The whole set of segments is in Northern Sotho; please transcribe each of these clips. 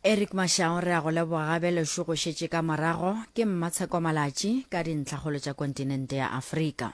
eric mašao re a go leboga gabe lešo go šetše ka morago ke mmatsheko malatši ka dintlhakgolo tša kontinente ya afrika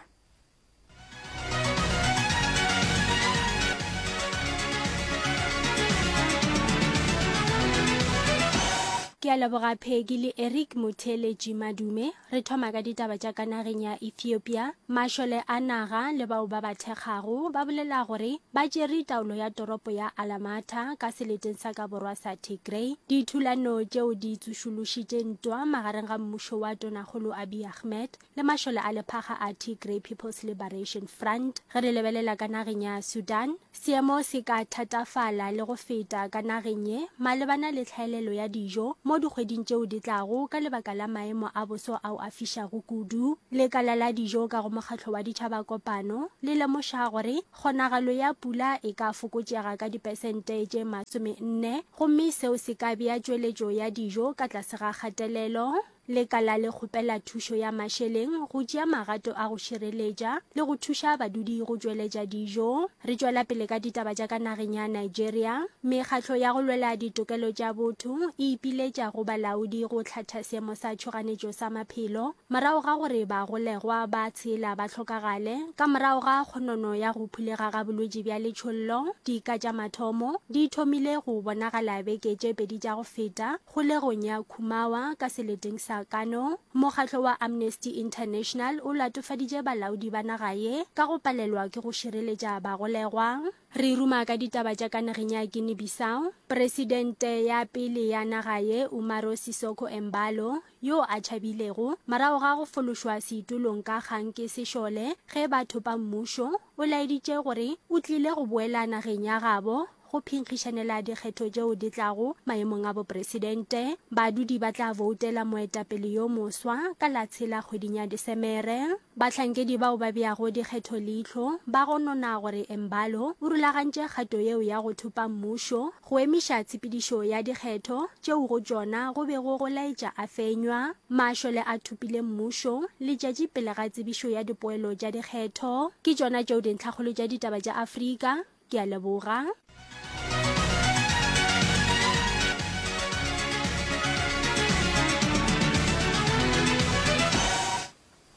ke a leboga pheki le eric motheletši madume Re thoma ka ditaba tša ka nageng ya Ethiopia. Mašole a naga le bao ba ba thekgago ba bolela gore ba tšere taolo ya toropo ya Alamata ka seleteng sa ka borwa sa Tigray. Dithulano tšeo di tsošološitše ntwa magareng ga mmušo wa Tonakgolo Abiy Ahmed le mašole a lephaga a Tigray People's Liberation Front. Ge re lebelela ka nageng ya Sudan, Seemo se ka thatafala le go feta ka nageng ye malebana le tlhaelelo ya dijo mo dikgweding tšeo di tlago ka lebaka la maemo a boso ao a fišago kudu. Lekala la dijo ka go Mokgatlo wa Ditšhaba Kopano le lemoša gore kgonagalo ya pula e ka fokotšega ka dipesente tše masome nne gomme seo se ka bea tšweletšo ya dijo ka tlase ga kgatelelo. Lekala le kgopela thušo ya mašeleng go tšea magato a go šireletša le go thuša badudi go tšweletša dijo. Re tšwela pele ka ditaba tša ka nageng ya Nigeria. Mekgatlo ya go lwela ditokelo tša botho e ipiletša go balaodi go hlatha seemo sa tšhoganetšo sa maphelo morago ga gore bagolegwa ba tshela ba hlokagale ka morago ga kgonono ya go phulega ga bolwetši bja letšhollo. Dika tša mathomo di thomile go bonagala beke tše pedi tša go feta. Kgolegong ya Khumawa ka seleteng sa Kano, mokgatlo wa Amnesty International o latofaditše balaodi ba naga ye ka go palelwa ke go šireletša bagolegwa. Re ruma ka ditaba tša ka nageng ya Guinea-Bissau. Presidente ya pele ya naga ye, Umaro Sissoco Embaló, yo a tšhabilego morago ga go fološwa seitulong ka kgang ke sešole ge ba thopa mmušo, o laeditše gore o tlile go boela nageng ya gabo Go phinkgišanela dikgetho tšeo di tlago maemong a bopresidente, badudi ba tla boutela moetapele yo moswa ka la tshela kgweding ya Desemere. Bahlankedi bao ba beago dikgetho leihlo ba gonona gore Embalo o rulagantše kgato yeo ya go thupa mmušo go emiša tshepedišo ya dikgetho tšeo go tšona go bego go laetša a fenywa. Mašole a thupile mmušo letšatši pele ga tsebišo ya dipoelo tša dikgetho. Ke tšona tšeo dintlhakgolo tša ditaba tša Afrika Ke a leboga.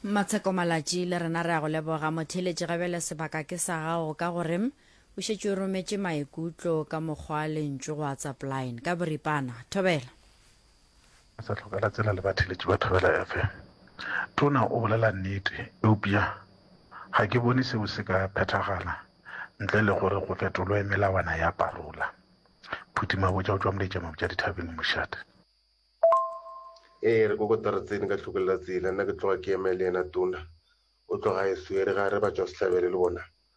Matsheko Malatši le rena re a go leboga motheeletši gabele sebaka ke sa gago ka gore o šetše o rometše maikutlo ka mokgwa lentšu go WhatsApp line ka boripana. Thobela. A sa hlokela tsela le batheeletši ba Thobela FM. Tona o bolela nnete, eupša ga ke bone seo se ka phethagala ntle le gore go fetolwe melawana ya parola. Phuti Mabotja o tšwa Moletšamabotja Dithabeng, Mošate. Ee, re kokota re tsene ka tlhokolela tsela, nna ke tloga ke eme le yena Tona. O tloga a e swere, ga re ba tšwa sehlabelo le bona.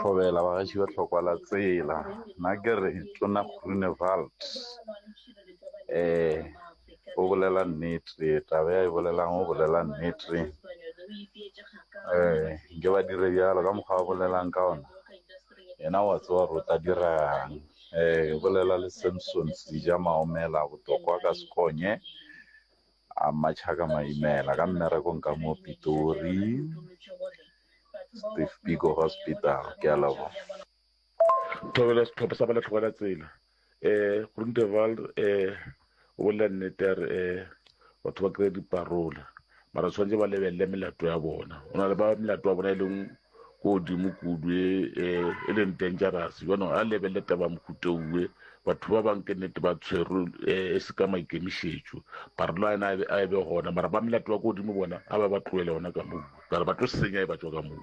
Thobela, Bagaešo ba tlhokwa la tsela, nna ke re Tona Groenewald um o bolela nnete, taba ya e bolelang o bolela nnete um nke ba dire bjalo ka mokgwa a bolelang ka ona, yena o a tseba gore o tla dirang. Um o bolela le Samson Sija Maomela, Botlokwa ka Sekonye. A Machaka Maimela ka mmerekong ka mo Pitori, Steve Biko Hospital. Ke a leboga. Thobela setlhopha sa ba le tlhogela tsela um Groenteval um o bolela nnete a re um batho ba kry-a diparola mara tshwanetse ba lebelele melato ya bona go na le ba melato ya bona e leng ko godimo kudu e, e, e leng dangerous jwanong a lebelele taba mohutoue batho ba bangwe ke nnete ba tshwerwe e se ka maikemišetšo barlo a ena a e be gona mara ba melato wa ko godimo bona a ba ba tloele gona ka moo kare ba tlo senya e ba tswa ka moo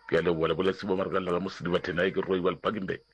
ke a leboa le boletse bo marekelela ka mo sedibathena e ke roi ba lepakeng beke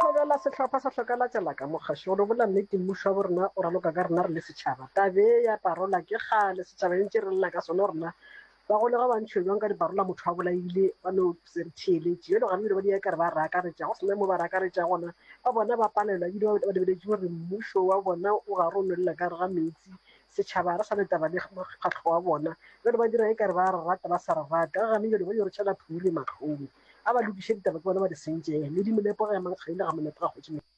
Thobela sehlopha sa Hlokalatša la ka Mokgašo gore o bolela nnete mmušo wa borena o raloka ka rena re le setšhaba tabe ya parola ke kgale setšhaba entše re lela ka sona gore na ba go lega ba ntšhiwe bjang ka diparola motho wa bolaile ba no se re theeletše bjalo gabile ba di ya ka re ba re akaretša go sena mo ba re akaretša gona ba bona ba palelwa ebile ba lebeletše gore mmušo wa bona o ga re o nwelela ka re ga metsi setšhaba re sa le taba le mokgatlho wa bona bjale ba dira e ka re ba re rata ba sa re rate ga gane bjale ba yo re tšhela phuri matlhong a ba lokiše ditaba ke bona ba di sentšeng le dimolepo ga ya mankgadi le ga molepo ga kgotšimeng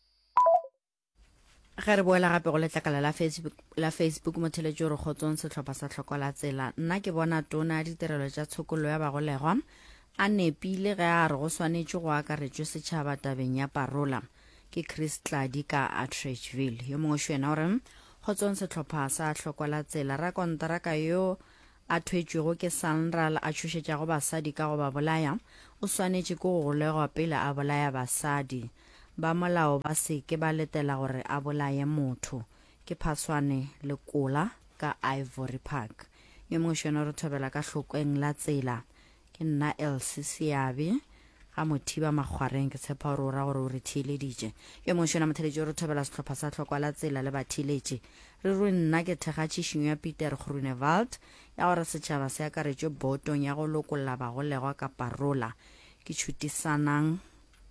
ge re boela gape go letlakala la facebook la facebook motheletši o re kgotsong sehlopha sa tlhoko la tsela nna ke bona tona ya ditirelo tša tshokollo ya bagolegwa a nepile ge a re go swanetše go akaretšwe setšhaba tabeng ya parola ke chris tladi ka atrachville yo mongwe xo yena o re kgotsong sehlopha sa tlhoko la tsela rakontaraka yo a thwetšwego ke Sanral a tšhošetšago basadi ka go ba bolaya, o swanetše ke go golegwa pele a bolaya basadi. Ba molao ba se ke ba letela gore a bolaye motho. Ke phaswane le kola ka Ivory Park. Yo mongwe šono re thobela ka hlokeng la tsela. Ke nna Elsie Seabi, ga Mothiba Makgwareng, ke tshepa gore o ra gore o re theeleditše. Yo mongwe šona motheeletši o re thobela sehlopha sa Tlhokwa la Tsela le batheeletši. Re rue nna ke thekga tšhišinyo ya Pieter Groenewald ya gore setšhaba se akaretšwe bootong ya go lokolla bagolegwa ka parola. Ke tšhutisanang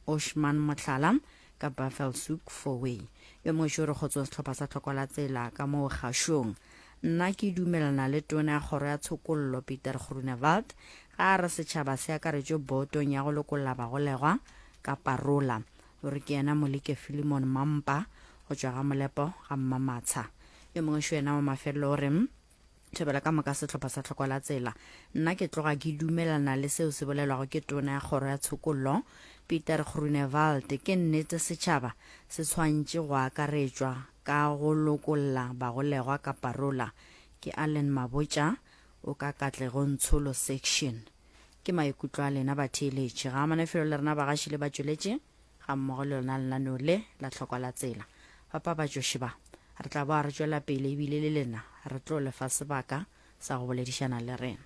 Oshman Mohlala ka Buffelshoek Fourway. Yo mongwe šo o re kgotsong sehlopha sa Tlhokwa la Tsela ka moo Kgašong. Nna ke dumelana le Tona ya Kgoro ya Tshokollo, Pieter Groenewald, ge a re setšhaba se akaretšwe Bootong ya go Lokolla Bagolegwa ka parola. O re ke yena Molike Philemon Mampa go tšwa ga Molepo ga Mmamatsha. Yo mongwe šo yena wa mafelelo o re, Thobela ka moka sehlopha sa Tlhoko la Tsela. Nna ke tloga ke dumelana le seo se bolelwago ke Tona ya Kgoro ya Tshokollo, Pieter Groenewald. Ke nnete setšhaba se tshwantše go akaretšwa Ka go lokolla bagolegwa ka parola ke Allen Mabotja o ka Katlegong Tsholo Section. Ke maikutlo a lena batheeletši. Ga amana felo le rena bagaši le batšweletši ga mmogo le lona lenaneo le la tlhokwa la tsela. Bapabatšoši ba, re tla boa re tšwela pele ebile le lena re tlo lefa sebaka sa go boledišana le rena.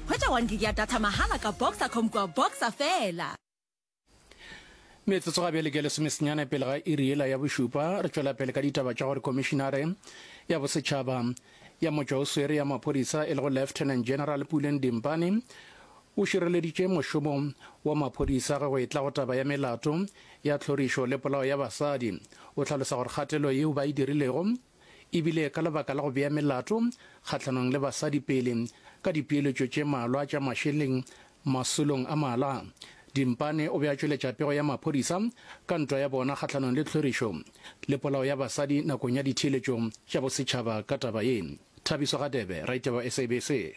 Hwetša one gig ya data mahala ka Boxacom kua Boxer fela. Metsotso ga bjale ke lesomesenyane pele ga iri yela ya bošupa re tšwela pele ka ditaba tša gore komišinare ya bosetšhaba ya motšwa o swere ya maphodisa e lego lieutenant general puleng dimpane o šireleditše mošomo wa maphodisa ge go etla go taba ya melato ya tlhorišo le polao ya basadi o hlalosa gore kgatelo yeo ba e dirilego e bile ka lebaka la go bea melato kgahlanong le basadi pele ka dipeeletšo tše malwa tša mašeleng masolong a mala, Dimpane o be a tšweletša pego ya maphodisa ka ntwa ya bona kgahlanong le tlhorišo le polao ya basadi nakong ya ditheeletšo tša bosetšhaba ka taba ye. Thabiso Radebe, Raditaba, SABC.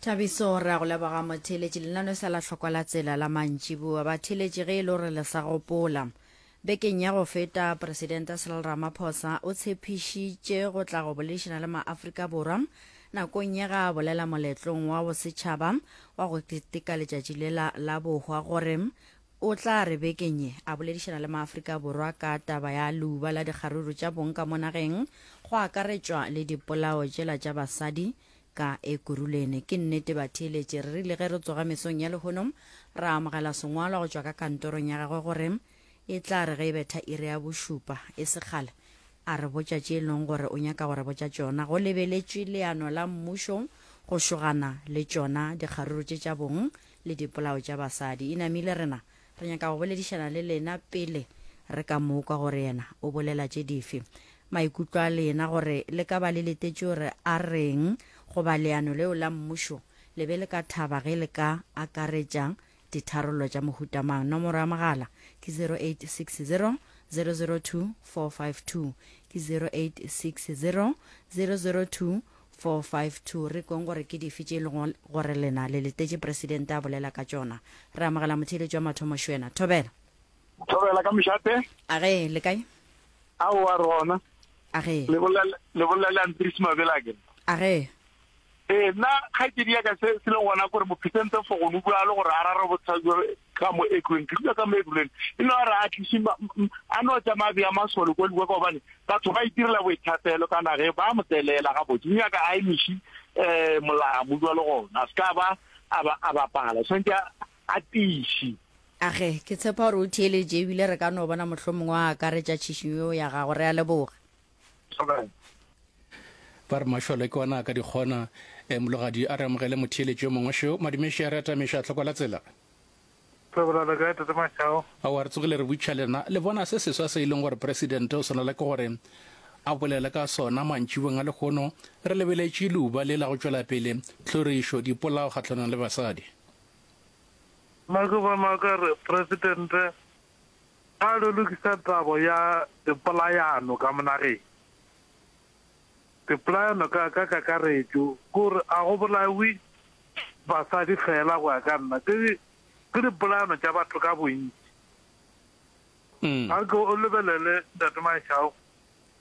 Thabiso, re a go leboga motheeletši. Lenaneo sa la hlokwa la tsela la mantšiboa. Batheeletši, ge e le gore le sa gopola, bekeng ya go feta Presidente Cyril Ramaphosa o tshepišitše go tla go boledišana le maAfrika Borwa nakong ye ga a bolela moletlong wa bosetšhaba wa go keteka letšatši lela la bohwa gore o tla re bekeng ye a boledišana le maAfrika Borwa ka taba ya leuba la dikgaruru tša bong ka mo nageng go akaretšwa le dipolao tšela tša basadi Ka Ekurhuleni. Ke nnete, batheeletši, re rile ge re tsoga mesong ya lehono, ra amogela sengwalwa go tšwa ka kantorong ya gagwe gore e tla re ge e betha iri ya bošupa, e se kgale, a re botša tše e leng gore o nyaka go re botša tšona. Go lebeletšwe leano la mmušo go šogana le tšona dikgaruru tše tša bong le dipolao tša basadi. Inamile, re na Re nyaka go boledišana le lena pele re ka mo kwa gore yena o bolela tše dife, maikutlo a lena gore le ka ba le letetše gore a reng goba leano leo la mmušo le be le ka thaba ge le ka akaretša ditharollo tša mohuta mang. Nomoro ya mogala ke 0860 002 452, ke 0860 002 452 Re kweng gore ke dife tše e lego gore lena le letetše Presidente a bolela ka tšona. Re amogela motheeletši wa mathomo Shwena. Thobela. Thobela ka mošate. A ge le kae? Aowa re gona. A ge. Le bolela le bolela le Andries Mabela ke. A ge. Ee nna kgaitsedi ya ka se se le gona gore mophesente fogono bjalo gore a rare bothata ka mo ekureng ke dula ka mo ekureng e no re a tlise a no tsa mabi a masole kwa lukwa ka gobane batho ba itirela boithapelo ka nage ba mo tselela ga botse mme ka a emiši um eh, molamu jwa le gona a se ka ba a bapala tshwanetse a tiši age ke tshepa gore o theeletše ebile re ka no bona mohlomongwe a akaretša tšhišinyo ya gago re a leboga ba re mašole ke ona a ka di kgona e mologadi a re amogele motheeletši yo mongwe šeo madumeši a re atameša a tlhokola tsela ao a re tsogile re butšha lena le bona se seswa se e leng gore presidente o swanela ke gore a bolele ka sona mantšibong a lekgono re lebeletše leuba le la go tšwela pele tlhorišo dipolao kgatlhanong le basadi maka ba maka re presidente A re lokisa taba ya dipolayano ka monageng. Dipolayano ka ka kakaretšo ke gore a go bolawe basadi fela go ya ka nna, ke ke dipolayano tša batho ka bontši. A ke o lebelele Ntate Mashau,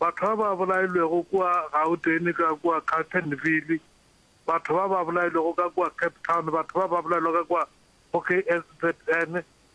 batho ba ba bolailwego kua Gauteng ka kua Carltonville, batho ba ba bolailwego ka kua Cape Town, batho ba ba bolailwego ka kua go KZN,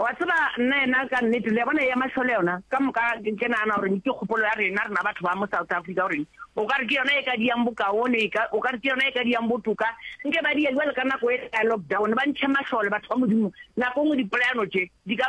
Wa tseba, nna yena, ka nnete, le ya bona, ya mašole yona, ka moka ke nagana gore ke kgopolo ya rena, rena batho ba mo South Africa, gore o ka re ke yona e ka diyang bokaone, o ka re ke yona e ka diyang botoka, nke ba diya jwale ka nako e ya lockdown, ba ntshe mašole, batho ba Modimo, nako nngwe dipolayano tše, di ka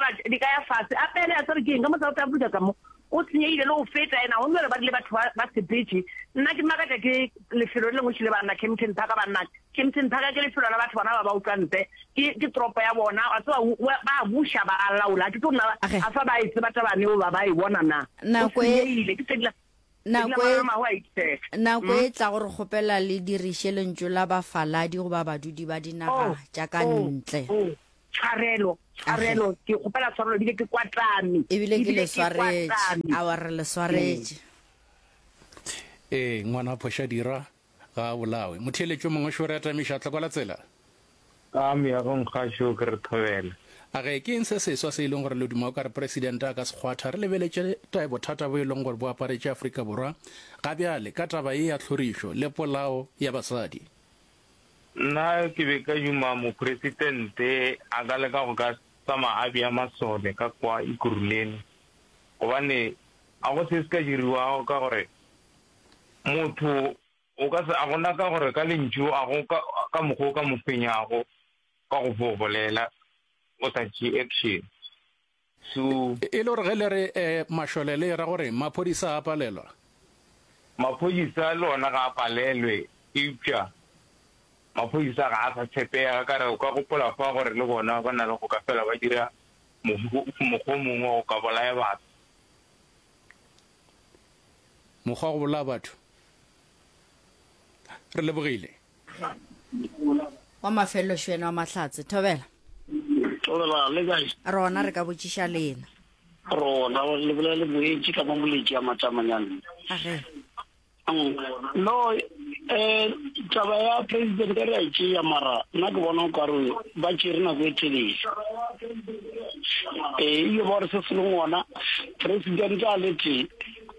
ya fase, a pele, a tsere ke eng, ka mo South Africa ka mo, O senyegile le go feta yena gomme gore ba rile batho ba ba sepetše. Nna ke makatša ke lefelo le lengwe šele banna Kempton Park banna. Kempton Park ke lefelo la batho bona ba ba utlwantle. Ke ke toropo ya bona wa tseba u wa ba buša ba a laola ha ke tlo nna Ge. afa ba e tseba taba yeo ba ba e bona na. O Nako e senyegile ke segla segla Nako e magalamago a itshetla. Nako e tlago re kgopela le diriše lentšu la bafaladi goba badudi ba dinaga Oh tša ka oh ntle. oh Tshwarelo, tshwarelo, ke kgopela tshwarelo, ebile ke kwa tlame. Ebile ke le swaretše, awa re le swaretše. Ee, ngwana a phoša dira, ga a bolawe. Motheeletši o mongwe o šore a tamiša, a tlhokola tsela. Ka meagong gašo ke re thobela. A ge, ke eng se seswa se e leng gore le duma o ka re Presidente a ka se kgwatha? Re lebeletše ta bothata bo e leng gore bo aparetše Afrika Borwa ga bjale ka taba ye ya tlhorišo le polao ya basadi. Nna ke be ka duma Mopresitente a ka leka go ka tsamaya a bea masole ka kwa Ekurhuleni gobane ga go se se ka diriwago ka gore motho o ka se, a gona ka gore ka lentšu a go ka mokgwa o ka mo fenyago ka go bolela o sa tšee action. Sue. E le gore ge le re, eh, mašole, le e ra gore maphodisa a palelwa? Maphodisa le ona ga a palelwe, eupša maphodisa ga a sa tshepega. Ka re o ka gopola fa gore le bona ba na le go ka fela ba dira mokgwa o mongwe wa go ka bolaya batho. Mokgwa wa go bolaya batho? Re lebogile. wa mafelelo šwena wa mahlatse thobela tobela le kae rona re ka botšiša lena rona le bolela le boetše ka mamoletši a matamanyana age mm, no um taba ya president ka re a tšea mara nna ke bona o kare ba tšere nako e telele ee ile ba gore se se le ngwana president a le tee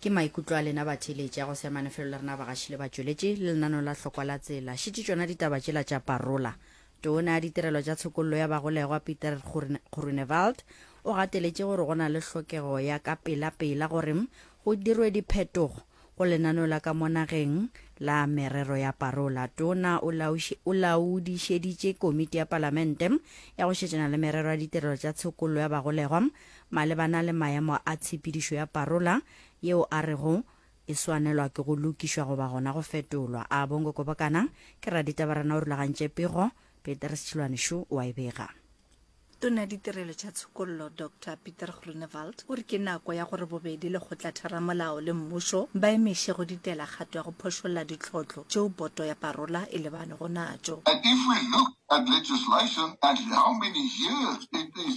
Ke maikutlo a lena batheeletši a go se amane felo le rena bagaši le batšweletši le lenaneo la Hlokwa la Tsela. Šetše tšona ditaba tšela tša parola. Toona ya Ditirelo tša Tshokollo ya Bagolegwa Pieter Groenewald o gateletše gore go na le hlokego ya ka pelapela gore go dirwe diphetogo go lenaneo la ka mo nageng la merero ya parola. Toona o laodišeditše Komiti ya Palamente ya go Šetšana le Merero ya Ditirelo tša Tshokollo ya Bagolegwa Malebana le maemo a tshepedišo ya parola yeo a rego e swanelwa ke go lokišwa goba gona go fetolwa, a Bongo Kobokana ke raditabarana o rulagantše pego, Petrus Chilwanishu o a e bega. Tona ditirelo tša tshokollo Doctor Pieter Groenewald o re ke nako ya gore bobedi lekgotlatheramolao le mmušo ba emeše go ditela kgato ya go phošolla ditlhohlo tšeo poto ya parola e lebanego natšo. And if we look at legislation and how many years it is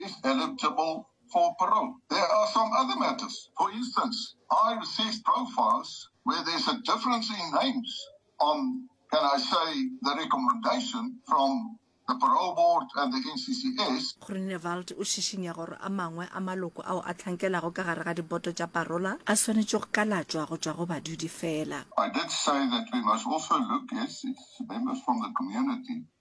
is eligible for parole. There are some other matters. For instance, I received profiles where there's a difference in names on, can I say, the recommendation from the parole board and the NCCS. Groenewald o šišinya gore a mangwe a maloko ao a tlhankelago ka gare ga diboto tša parola a swanetše go kalatšwa go tšwa go badudi fela. I did say that we must also look at members from the community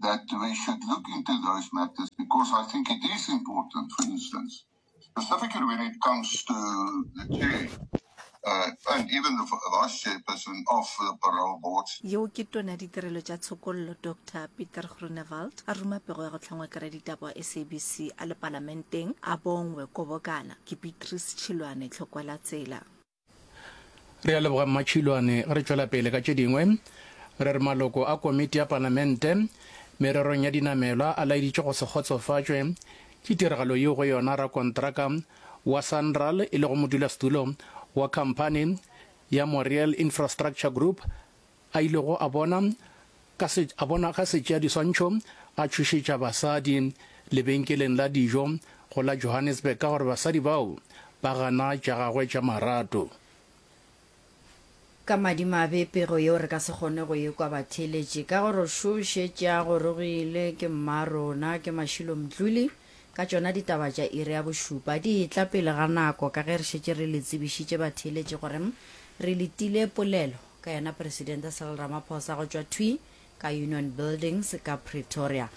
that we should look into those matters because I think it is important, for instance, specifically when it comes to the chair uh, and even the vice chairperson of the parole board. yeo ke tona ditirelo tša tshokollo dr peter grunewald a ruma pego ya go hlangwa kere ditaba wa sabc a le palamenteng a bongwe kobokana ke beatrice tšhilwane tlhokwela tsela Re a leboga Mmatšhilwane. Ge re tšwela pele ka tše dingwe, re re maloko a komiti ya Palamente mererong ya dinamelwa a laeditše go se kgotsofatšwe ke tiragalo yeo go yona rakontraka wa Sanral e lego modulasetulo wa khamphani ya Moriel Infrastructure Group a ilego a bona ka se, a bona ga setšeadiswantšho a tšhošetša basadi lebenkeleng la dijo go la Johannesburg ka gore basadi bao ba gana tša gagwe tša marato. Ka madimabe pego yeo re ka se kgone go e kwa batheeletši ka gore o šošetše a gorogile ke mmarona, ke Mashilo Mdluli. Ka tšona ditaba tša iri ya bošupa di etla pele ga nako ka ge re šetše re le tsebišitše batheeletši gore re letile polelo. ka yena Presidente Cyril Ramaphosa go tšwa thwi ka Union Buildings ka Pretoria.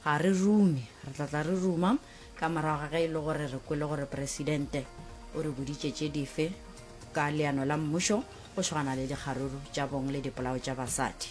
Ga re rume, re tla tla re ruma ka morago ga ge e le gore re kwele gore Presidente o re boditše tše dife ka leano la mmušo go swagana le dikgaruru tša bong le dipolao tša basadi.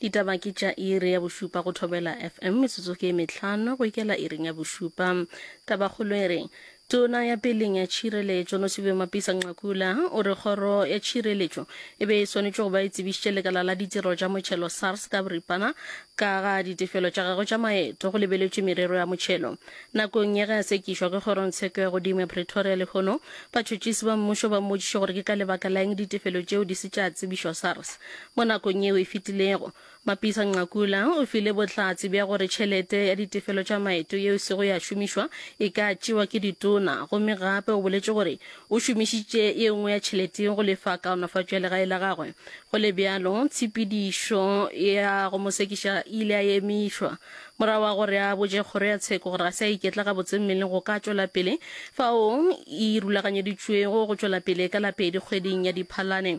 Ditaba ke tša iri ya bošupa go Thobela FM, metsotso ke e mehlano go ikela iring ya bošupa. Tabakgolo e re, Tona ya peleng ya tšhireletšo Nosiviwe Mapisa-Nqakula o re kgoro ya tšhireletšo e be e swanetše go ba e tsebišitše lekala la ditiro tša motšhelo SARS ka boripana ka ga ditefelo tša gagwe tša maeto go lebeletšwe merero ya motšhelo. Nakong ya ge a sekišwa ke kgorongtsheko ya godimo ya Pretoria lehono, batšhotšisi ba mmušo ba mmotšiše gore ke ka lebaka la eng ditefelo tšeo di se tša tsebišwa SARS. Mo nakong yeo e fetilego, Mapisa Nqakula o file bohlatse bja gore tšhelete ya ditefelo tša maeto yeo e sego ya šomišwa e ka tšewa ke ditona gomme gape o boletše gore o šomišitše ye nngwe ya tšhelete go lefa kaonafatšo ya legae la gagwe. Go le bjalo, tshepedišo ya go mo sekiša e ile ya emišwa morago ga gore a botše kgoro ya tsheko gore ga se a iketla gabotse mmeleng go ka tšwela pele fao e rulaganyeditšwego go tšwela pele ka la pedi kgweding ya Diphalane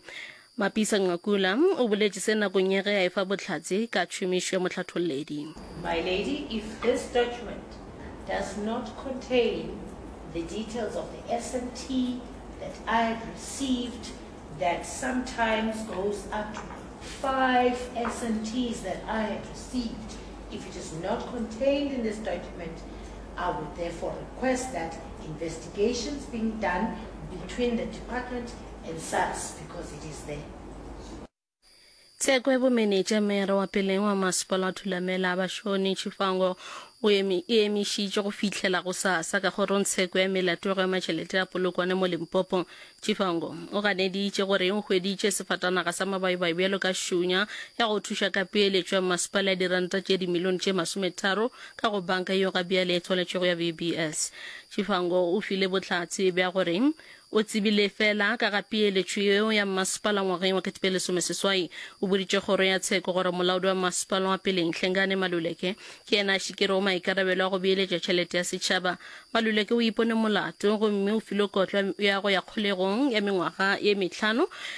Mapisa-Nqakula o boletše se nakong ya ge a efa bohlatse ka tšhomišo ya mohlatholledi. My lady, if this document does not contain the details of the SMT that I have received that sometimes goes up to five SMTs that I have received, if it is not contained in this document, I would therefore request that investigations being done between the Department and sucks because it is there. Tsekwe bomenetša mere wa peleng wa masepala wa Thulamela Bashoni Chifango o emi, e emišitše go fihlela go sa sa ka kgorong tsheko ya melatego ya matšhelete a Polokwane mo Limpopo. Chifango o ganeditše gore o hweditše sefatanaga sa mabayibayi bjalo ka šunya ya go thuša ka peeletšo ya masepala ya diranta tše dimilione tše masometharo ka go banka yeo ga bjale e tswaletšego ya VBS. Chifango o file bohlatse bja gore O tsebile feela ka ga peeletšo yeo ya mmasepala ngwageng wa ketepelesomeseswai. O boditše kgoro ya tsheko gore molaodi wa mmasepala wa pele Nhlengane Maluleke ke yena a šikerego maikarabelo a go beeletša tšhelete ya setšhaba. Maluleke o ipone molato gomme o filwe kotlo ya go ya kgolegong ya mengwaga ye mehlano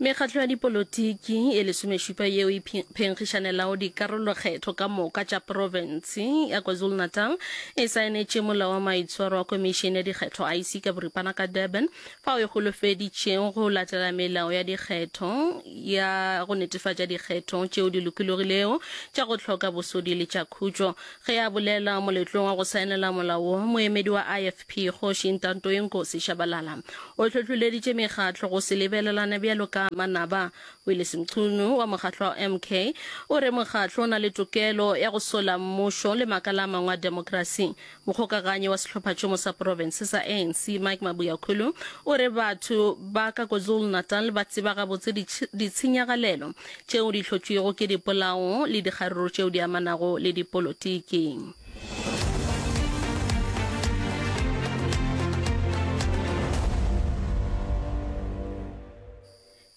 mekgatlo ya dipolotiki e lesomešupa yeo e phenkgišanelago dikarolokgetho ka moka tša profense ya kwazulu-natal e saenetše molao wa maitshwaro wa komišene ya dikgetho ic ka boripana ka durban fao e holofeditšego go latela melao ya dikgetho ya go netefatša dikgetho tšeo di lokologilego tša go hloka bosodi le tša khutšo. Ge a bolela moletlong wa go saenela molao wo, moemedi wa IFP, Kgoši Ntantoinkosi Shabalala, o hlohloleditše mekgatlo go se lebelelane bjalo ka manaba. Willis Mchunu wa mokgatlo wa MK o re mokgatlo o na le tokelo ya go sola mmušo le makala a mangwe a demokrasi. Mokgokaganyi wa sehlophatšhomo sa profense sa ANC, Mike Mabuyakhulu, o re batho ba ka KwaZulu-Natal ba tseba gabotse ditshenyagalelo tšeo di hlotšwego ke dipolao le dikgaruru tšeo di amanago le dipolotiki.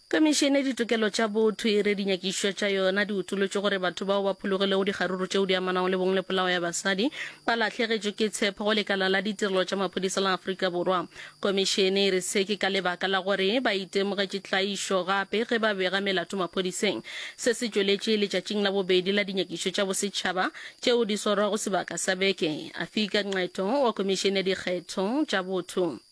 Komišene ya Ditokelo tša Botho e re dinyakišišo tša yona di utolotše gore batho bao ba phologilego dikgaruru tšeo di amanago le bong le polao ya basadi ba lahlegetšwe ke tshepo go lekala la ditirelo tša maphodisa la Afrika Borwa. Komišene e re se ke ka lebaka la gore ba itemogetše tlaišo gape ge ba bega melato maphodiseng. Se se tšweletše letšatšing la bobedi la dinyakišišo tša bosetšhaba tšeo di swarwago sebaka sa beke. Afika Nqeto wa Komišene ya Dikgetho tša Botho.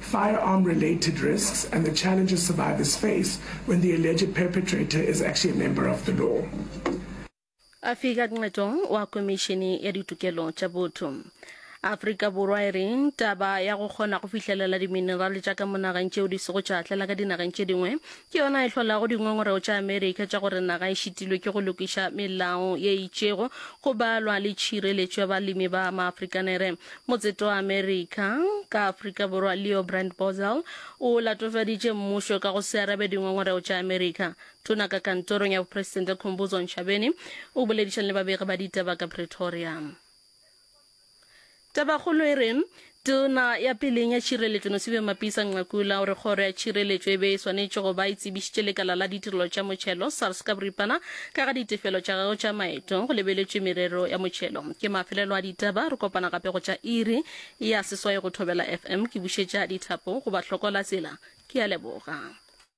Firearm-related risks and the challenges survivors face when the alleged perpetrator is actually a member of the law. Afika Nqetong wa Komišene ya Ditokelo tša Botho. Afrika Borwa e re taba ya go kgona go fihlelela diminerale tša ka mo nageng tšeo di sego tša atlela ka dinageng tše dingwe Ke yona e hlolago dingongorego tša Amerika tša gore naga e šitilwe ke go lokiša melao ye e itšego go balwa le tšhireletšo ya balemi ba Maafrikanere. Motseta wa Amerika ka Afrika Borwa Leo Brandt Boesel o latofaditše mmušo ka go se arabe dingongorego tša Amerika. Tona ka kantorong ya bopresidente Khumbudzo Ntshavheni o boledišana le babegi ba ditaba ka Pretoria. Tabakgolo e re, Tona ya peleng ya Tšhireletšo Nosiviwe Mapisa-Nqakula o re kgoro ya tšhireletšo e be e swanetše go ba e tsebišitše lekala la ditirelo tša motšhelo, SARS, ka boripana ka ga ditefelo tša gagwe tša maeto go lebeletšwe merero ya motšhelo. Ke mafelelo a ditaba, re kopana gape go tša iri ya seswai go Thobela FM. Ke bušetša dithapo go Bahlokolatsela. Ke a leboga.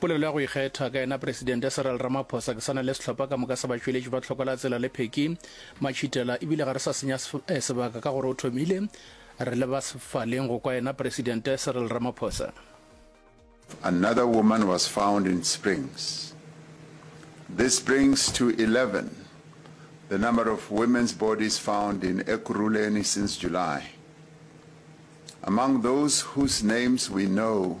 Polelo ya go ikgetha ka yena Presidente Cyril Ramaphosa, ke sa na le sehlopha ka moka sa batšweletši ba tlhoko la tsela le pheki, matšhitela ebile ga re sa senya sebaka ka gore o thomile, re leba sefaleng go kwa yena Presidente Cyril Ramaphosa. Another woman was found in Springs. This brings to 11 the number of women's bodies found in Ekurhuleni since July. Among those whose names we know